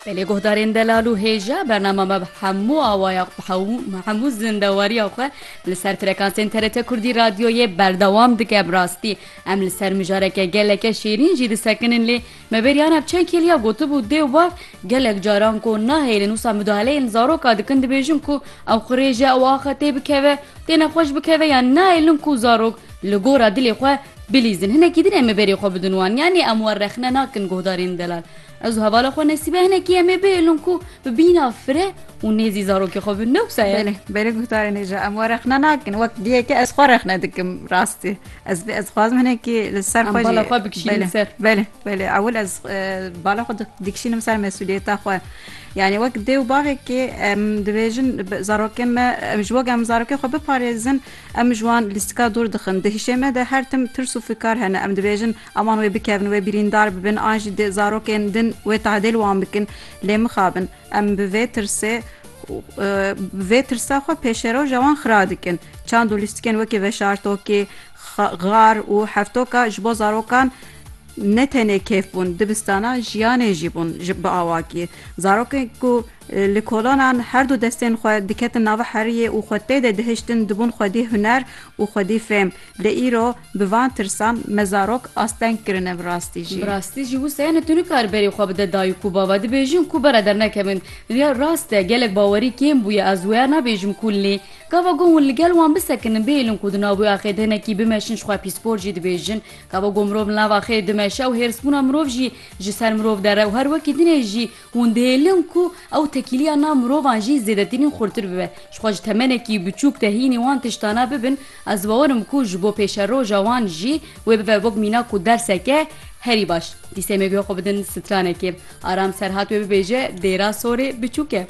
Belê guhdarên delal û hêja bernama me bi hemû awaya bi hemû zindewariya xwe li ser frekansên TRT Kurdî radyoyê berdewam dike bi rastî em li ser mijareke geleke şêrîn jî disekinin lê me bêriya ne bi çend kêliya gotibû dê û bav gelek caran ku nahêlin wisa mudahaleyên zaroka dikin dibêjin ku ew qirêje ew axe tê bikeve tê nexweş bikeve yan nahêlin ku zarok li gora dilê xwe Bilîzin, hinekî din em ê berê xwe bidin wan. Yanî em wan rexne nakin guhdarên delal. Ez û hevala xwe Nesîbe hinekî em ê bihêlin ku bi bîna fire û nêzî zarokê xwe bin. Ne wisa ye? Belê, belê guhdarên hêja em wan rexne nakin. Wek diyeke ez xwe rexne dikim rastî. Ez vê ez dixwazim hinekî li ser xwe jî. Em bala xwe bikişînin ser. Belê, belê. Ewil ez bala xwe dikişînim ser mesûliyeta xwe. Yanî wek dê û bavekê em dibêjin zarokên me em ji wek em zarokên xwe biparêzin. Em ji wan lîstika dûr dixin. Di hişê me de her tim tirs û fikar hene. Em dibêjin aman wê bikevin, wê birîndar bibin an jî di zarokên din wê tadêl wan bikin. Lê mixabin. Em bi vê tirsê bi vê tirsa xwe pêşeroja wan xira dikin. Çand û lîstikên wekî veşartokî, xar û hevtoka ji bo zarokan ne tenê kêf bûn, dibistana jiyanê jî bûn bi awakî. Zarokên ku Li kolanan her du destên xwe diketin nava heriyê û xwe tê de dihiştin dibûn xwedî huner û xwedî fêm. Lê îro bi van tirsan mezarok asteng kirine bi rastî jî. Bi rastî jî wisa ye ne tu nikare berê xwe bide dayik û bava dibêjin ku bere dernekevin. Ya rast e gelek bawerî kêm bûye ez wêya nabêjim ku lê gava gon hûn li gel wan bisekinin bihêlin ku di nav wê axê de hinekî bimeşin ji xwe pîspor jî dibêjin gava gon mirov li nav axê dimeşe û hêrsbûna mirov jî ji ser mirov dere û her wekî dinê jî Hûn dihêlin ku ew tekîliya nav mirovan jî zêdetirîn xurtir bibe. Ji xwe ji temenekî biçûk de hînî wan tiştana bibin, ez bawer im ku ji bo pêşeroja wan jî wê bibe wek mînak û derseke herî baş. Dîsê em ê guhe xwe bidin stranekê. Aram Serhat wê bibêje dêra sorê biçûk e.